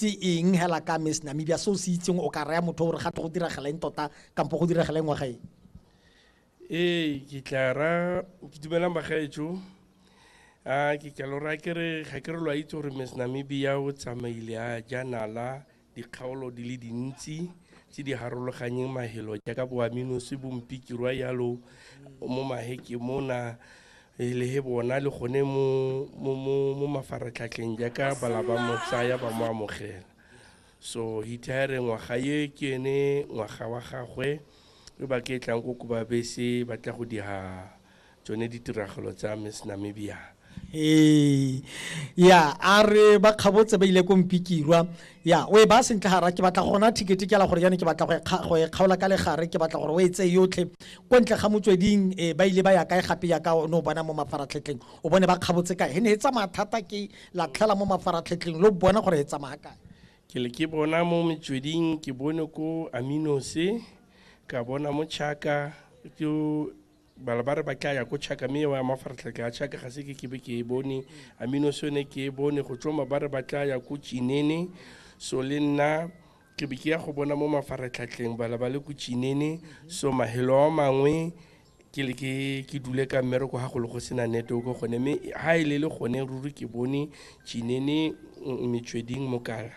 ke eng hela ka miss namibia se o se itseng o ka raya motho gore ga tle go diragalaeng tota kampo go diragalaeng wa gae ee ke tla ra ke dumelang bagaetso a ke ka lora ke re ga ke re lo a itse gore miss namibia o tsamaile a janala dikgaolo di le dintsi tse di harologanyeng mahelo jaaka boaminosi bompikirwa yalo mo maheke mona e le he bona le gone mo mo mo mo mafaratlhatlheng jaaka bala ba mo tsaya ba mo amogela so hithaere ngwaga ye ke ene ngwaga wa gagwe e ba ke tlang ko kubabese ba tla go dira tsone ditiragalo tsa miss namibia ee ya a re ba kgabotse ba ile ko mpikirwa ya o e baya sentle gara ke batla gona thikete kela gore jane ke batla go e kgaola ka legare ke batla gore o e tseye yotlhe ko ntle ga motsweding e ba ile ba ya kae gape ya ka o ne o bona mo mafaratlhetlheng o bone ba kgabotse kae he ne e tsamaya thata ke latlhela mo mafaratlhetlheng lo bona gore e tsamaya kae ke le ke bona mo metsweding ke bone ko aminose ka bona mo chaka ke bala ba re ba tla ya ko chaka mme wa mafaratlhatlha ya chaka ga se ke kebe ke e bone amino se yone ke e bone go tsoma ba re ba tla ya ko chinene so le nna ke be ke ya go bona mo mafaratlhatlheng bala ba le ko chinene so mahelo a mangwe ke le ke ke dule ka mmereko ga go le go sena network gone mme ha e le le gone ruri ke bone chinene mm, metsweding mokala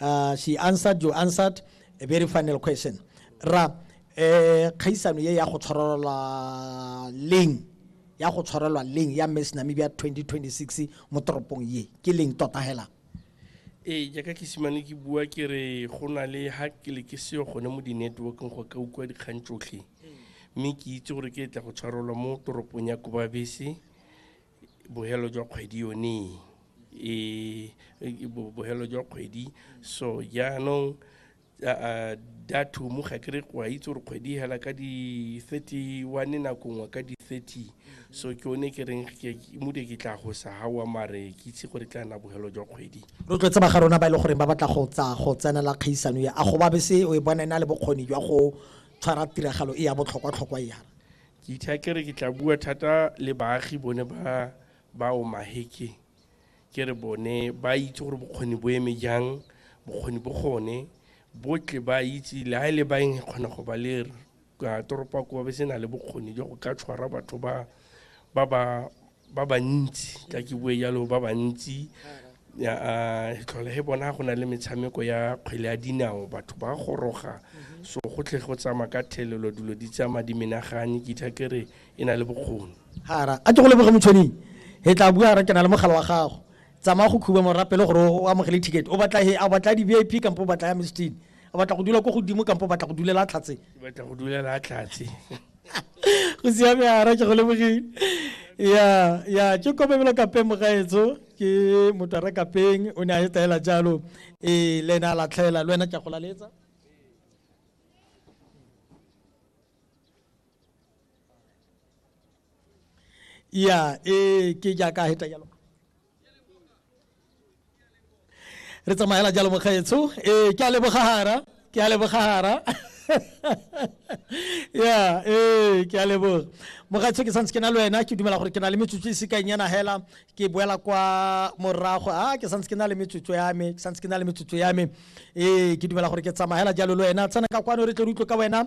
uh, she answered you answered a very final question ra eh khaisano ye ya go tshwarelwa leng ya go tshwarelwa leng ya Miss Namibia 2026 mo toropong ye ke leng tota hela ee jaaka ke simane ke bua ke re go na le ha ke le ke seyo gone mo di-networkeng go ka utlwa dikgang tsotlhe mme ke itse gore ke tla go tshwarelwa mo toropong ya kobabese bohelo jwa kgwedi yone e, e bohelo jwa kgwedi so jaanong dathumu ga kere wa itse gore kgwedi e hela ka di-31 nako nngwe ka di-30 so ke one ke reng mode ke tla go sa gawa mare ke itse gore tla nna bogelo jwa kgwedi rotloetse ba ga rona ba e le goreng ba batla go tsa go tsenela kgaisano ya a go ba bese o e bona e na le bokgoni jwa go tshwara tiragalo e ya botlhokwa-tlhokwa yana Ke itha ke re ke tla bua thata le baagi bone ba ba omaheke ke re bone ba itse gore bokgoni bo eme jang bokgoni bo gone botle ba itse le ha ile e ba eng kgona go ba le ka toropa ko ba se na le bokgoni jo go ka tshwara batho ba ba ba ba bantsi ka ke bue jalo ba bantsi ah, tlhole he bona go na le metshameko ya kgwele ya dinao batho ba goroga mhm. so go tle go tsama ka thelelo dilo di tsama di menagane ke itha ke re e na le bokgoni gara a ke go leboge motshwaneng he tla bua ra ke na le mogala wa gago tsamaya go khuba morapele gore o amogele ticket o batla he a batla di-v i p kampo o batla ya mistine o batla go dula ko godimo kampo o batla go dulela tlhatse batla go dulela tlhatse go siame ara ke go lebogile ya ya ke kopemelo kapeng mogaetso ke motho a re kapeng o ne a e taela jalo ee le ene a latlhela le wena ke a go laletsa ya ee ke jaaka a heta jalo re tsamaela jalo mokgaetsho ee ke a lebogagara ke a lebogagara ya ee ke a leboga mogatsho ke santse ke na le wena ke dumela gore ke na le metsotso e sekanyana hela ke boela kwa morago a ah, ke santse ke na le metsotso ya me ke santse ke na le metsotso ya me ee ke dumela gore ke tsamagela jalo le wena tsena ka kwano re tle re utlwe ka wena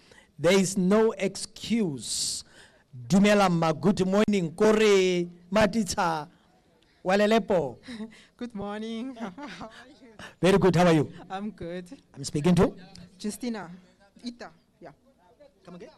there is no excuse dumela mma good morning kore matitsha walelepo good morning very good how are you i'm good i'm speaking to justina ita yeah come again